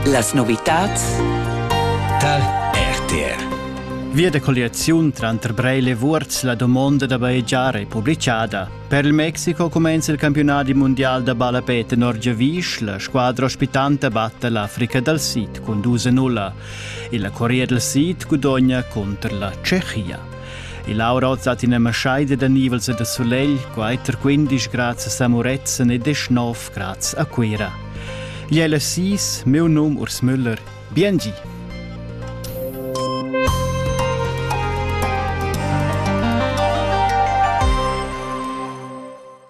Las novitads tar RTR. Via da colliaziun tranter Breil e Vuorz la domonda da bajegiar è publicada. Per il Mexiko cumenza il campionat mondial da ballapè tenor Giavisch. La squadra ospitanta batta l'Africa dal Sid cun 2-0. E la Corea del Sid gudogna contro la Tschechia. Il aura hoz hat üna maschaida da nivels e da sulegl, quatter quindisch grazas a Murezzan e deschnov graz a Cuira. Gli è l'assis, meu num Urs Müller. Bien gi!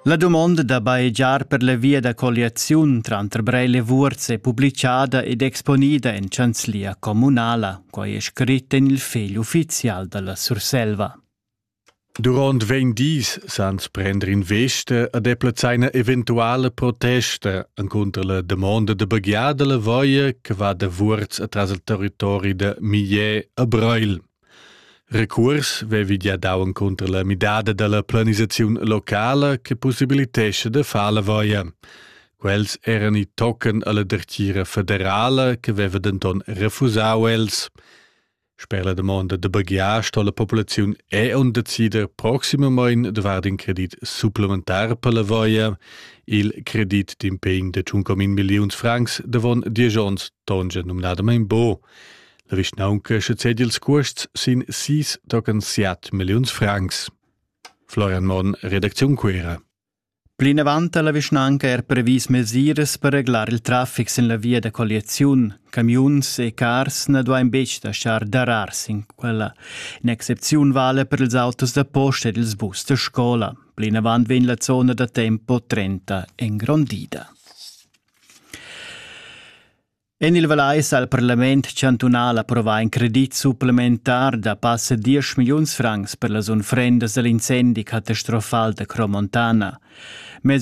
La dumonda da bajegiar per la via da colliaziun tranter Breil e Vuorz è publichada ed exponida en chanzlia communala, quai è scrit en il fegl uffizial dalla Surselva. Durant vegn dis sans prender in veste ad eplazeina eventuale protesta encunter la domanda de baghiada la voia che va da Vuorz atras il territori de Millet a Breil. Recuors vevi gia dau encunter la midada dalla planisaziun locala che possibilitescha da far la voia. Quels eran i tochen alla dertgira federala che veva denton refusau els. Sper la domanda da baghiar sto la populaziun è on decider proximamein de vard in credit supplementar per la voia, il credit d'impegn de 1,1 milliuns francs davon diesch onns tongia numnadamein bo. La vischnaunca sezedi ils cuosts sin sis tochen siat milliuns francs. Florian Monn, redacziun Cuera. Plinavant ha la vischnanca er previs mesiras per reglar il traffic sin la via da colliaziun. Camiuns e cars na duain betg lasciar darar sin quella. In'excepziun vale per ils autos da posta ed ils bus da scola. Plinavant vegn la zona da tempo 30 engrondida. En il Vallais ha il parlament chantunal approvà in credit supplementar da passa 10 milliuns francs per las unfrendas da l'incendi catastrofal da Cromontana. Mez